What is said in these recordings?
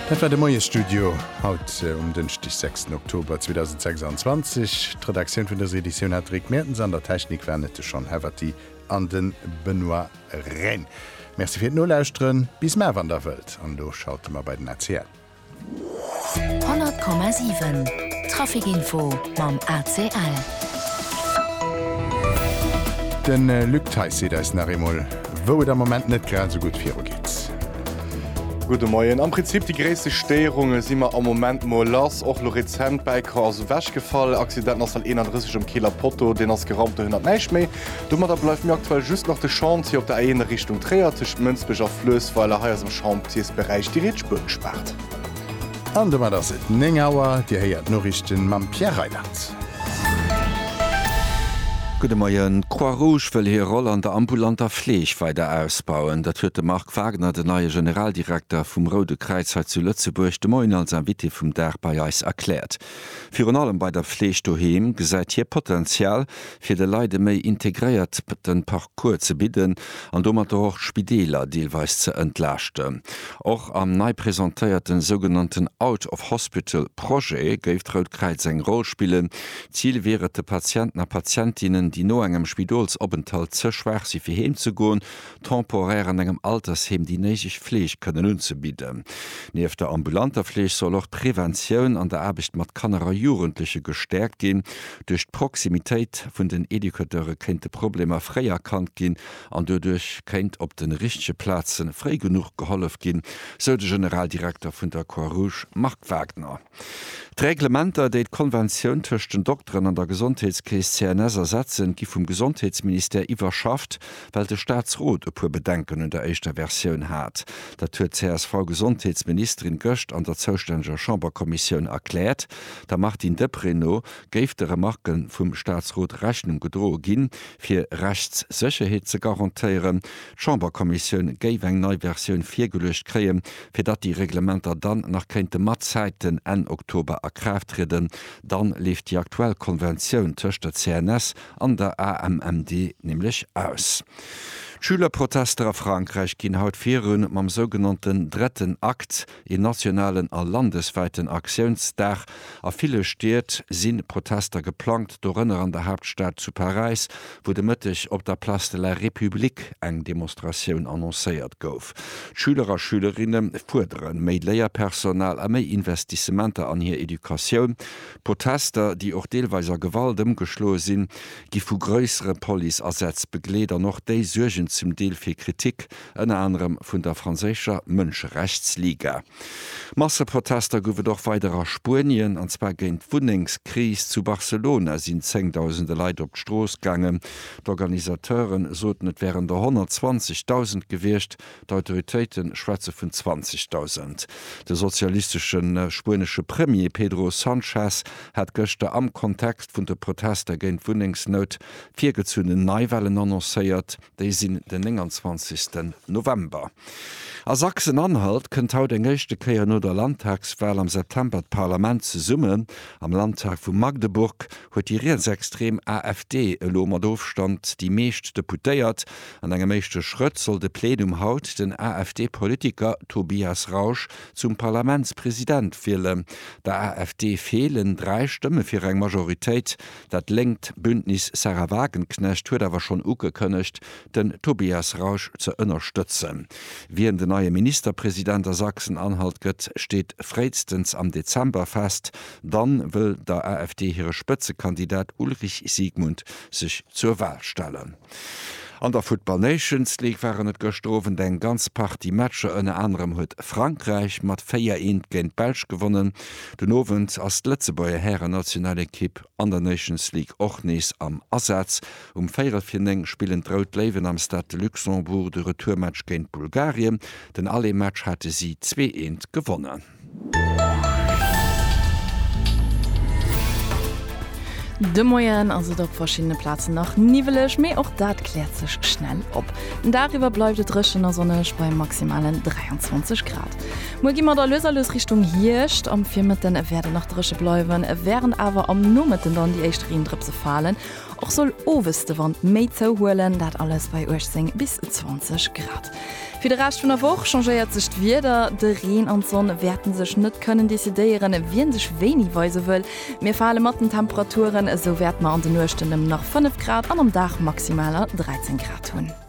Dat war de Moiesstudio haut um Dënschdeg, sechsten Oktober 2026. D'Redaktioun vun dëser Editioun hat de Rick Mertens, an der Technik waren et de Sean Heverty an de Benoît Rhäne. Merci fir d'Nolauschteren, bis mar wann Der wëllt, an elo schalte mer bei den ACL. 100,7 Trafic-Info mam ACL. De Luc Theis seet eis nach eemol, wou et am Moment net grad esou gutt viru geet. Gudde Moien. Am Prinzip déi gréisste Stéierunge si mer am Moment mol lass. Och lo rezent, Bäiker ass ewechgefall, Accident Nassel 31 um Kieler Potto, deen ass geraumt, dohinner näischt méi. Domadder bleift mir aktuell just nach de Chantier op der A1 a Richtung Tréier, tëscht Mënsbech a Fluessweiler. Hei ass am Chantiersberäich déi rietsch Spuer gespaart. An domat ass et 9 Auer. Dir héiert d'Noriichten mam Pierre Reyland. Gudde Moien. D'Croix-Rouge wëll hir Roll an der ambulanter Fleeg weider ausbauen. Dat huet de Marc Wagner, den neie Generaldirekter vum Roude Kräiz hei zu Lëtzebuerg, de Moien als Invité vum Dag bei eis erkläert. Virun allem bei der Fleeg doheem gesäit hie Potenzial, fir de Leit e méi integréierten Parcours ze bidden an domatter och d'Spideeler deelweis ze entlaaschten. Och am nei presentéierten sougenannten Out of Hospital Projet géif d'Rout Kräiz eng Roll spillen. D'Zil wier et, de Patienten a Patientinnen, déi no engem Spidolsopenthalt ze schwaach si fir heem ze goen, temporär an engem Altersheem déi néideg Fleeg kënnen unzebidden. Nieft der ambulanter Fleeg soll och d'Preventioun an der Aarbecht mat Kanner a Jugendleche gestäerkt ginn. Duerch d'Proximitéit vun den Educateure kéinte Problemer fréi erkannt ginn an doduerch kéint op de richtege Plaze fréi genuch gehollef ginn, sou de Generaldirekter vun der Croix-Rouge Marc Wagner. D'Reglementer, déi d'Konventioun tëscht den Dokteren an der Gesondheetskeess CNS ersetzen, gi vum Gesondheetsministère iwwerschafft, well de Staatsrot e puer Bedenken un der éischter Versioun hat. Dat huet d'CSV-Gesondheetsministerin gëscht an der zoustänneger Chamberkommissioun erkläert. Der Martine Deprez no géif de Remarke vum Staatsrot Rechnung gedroe ginn, fir Rechtssécherheet ze garantéieren. D'Chamberkommissioun géif eng nei Versioun virgeluecht kréien, Fir datt déi Reglementer dann nach kéinte mat Zäiten Enn Oktober a Kraaft trieden, dann leeft déi aktuell Konventioun tëscht der CNS an der AMMD nämlech aus. D'Schülerprotester a Frankräich ginn haut virun mam sougenannten Dretten Akt, een nationalen a landeswäiten Aktiounsdag. A ville Stied si Protester geplangt, dorënner an der Haaptstad zu Paräis, wou de Mëtteg op der Place de la République eng Demonstratioun annoncéiert gouf. Betrib. D'Schüler a Schülerinne fuerdere méi Léierpersonal a méi Investissementer an hir Educatioun. D'Protester, déi och deelweis a Gewalt ëmgeschloe sinn, gi vu gréissere Police-Asätz begleet an och déi suergen zum Deel fir Kritik, ënner anerem vun der franséischer Mënscherechtsliga. Masseprotester gouf et och weider a Spuenien, an zwar géint d'Wunnengskris. Zu Barcelona sinn Zéngdausende Leit op d'Strooss gaangen. D'Organisateure soten, et wären der 120.000 gewiescht, d'Autoritéite schwätze vun 20.000. De sozialistesche spuenesche Premier Pedro Sanchez hat gëschter am Kontext vun de Protester géint d'Wunnengsnout virgezunnen Neiwahlen annoncéiert. Déi sinn den 29 November. A Sachsen-Anhalt kënnt haut eng éischte Kéier no der Landtagswal am September d'Parlament zesummen. Am Landtag vu Magdeburg huet déi rietsextrem AfD elo mat Ofstand déi meescht Deputéiert. An engem éischte Schrëtt soll de Plenum haut den AfD-Politiker Tobias Rausch zum Parlamentspresident wielen. Der AfD feelen dräi Stëmme fir eng Majoritéit. Dat lénkt Bündnis Sahra Wagenknecht huet awer schonn ugekënnegt, den Tobias Rausch ze ënnerstëtzen. Wien den neie Ministerpresident a Sachsen-Anhalt gëtt, steet fréistens am Dezember fest. Dann wëll der AfD hire Spëtzekandidat Ulrich Siegmund sech zur Wal stellen. An der Football Nations League waren et gëschter Owend eng ganz Partie Matcher, ënner anerem huet Frankräich mat 4, 1 géint d'Belsch gewonnen. Den Owend ass d'Lëtzebuerger Hären-Nationalekipp an der Nations League och nees am Asaz. Um véierel vir 9 spillen d'Rout Léiwen am Stade de Luxembourg de Retourmatch géint Bulgarien. Den Aller-Match hate si zwee, eent gewonnen. De Moien ass et op verschiddene Plazen nach niwweleg, mee och dat kläert sech schnell op. Den Dag iwwer bleift et dréchen a sonneg bei maximalen 23 Grad. Muer gi mer da lues a lues Richtung Hierscht. Am Virmëtten wäert et nach dréche bleiwen, wärend awer am Nomëtten dann déi éischt Reendrëpse falen. Och soll owes de Wand méi zouhuelen, dat alles bei 18 bis 20 Grad. Fir de Rescht vun der Woch changéiert sech d'Wieder, de Reen an d'Sonn wäerten sech net kënnen decidéieren, wien sech wéini weise wëll. Mir fale mat den Temperaturen, esou wäert mer an de Nuechten ëm nach 5 Grad an am Dag maximaler 13 Grad hunn.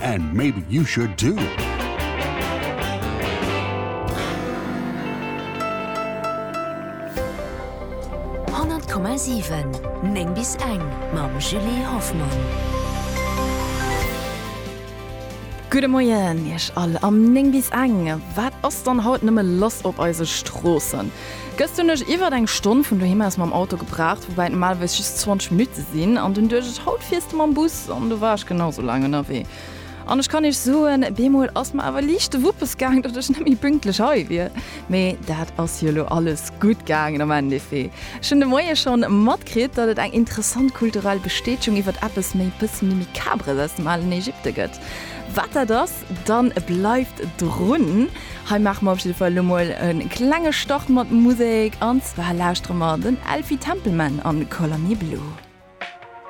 And maybe you should too! Gudde Moien Iech all am 9 bis eng. Wat ass dann haut nëmme lass op eise Stroossen? Gëscht hunn ech iwwert eng Stonn vun doheem aus mam Auto gebraucht, woubäi et normalerweis just 20 Minutte sinn, an dunn duecht ech, haut fiers de mam Bus, an du war ech genau esou laang ënnerwee. An ech kann iech soen, bemol ass mer awer liicht de Wuppes gaang, datt ech net méi pünktlech hei wier. Mee dat ass jo elo alles gutt gaangen am Endeffet. Ech hunn de Moie schonn matkritt, datt et eng interessant kulturell Bestätchung iwwert eppes méi, bësse méi Micabres aus dem alen Ägypte gëtt. Wat dat ass, Loscht, dann bleift drun. Hei maache mer op jidde Fall elo mol e klenge Start mat Musek, an zwar lauschtere mer den Elfie Templeman an Color Me Blue.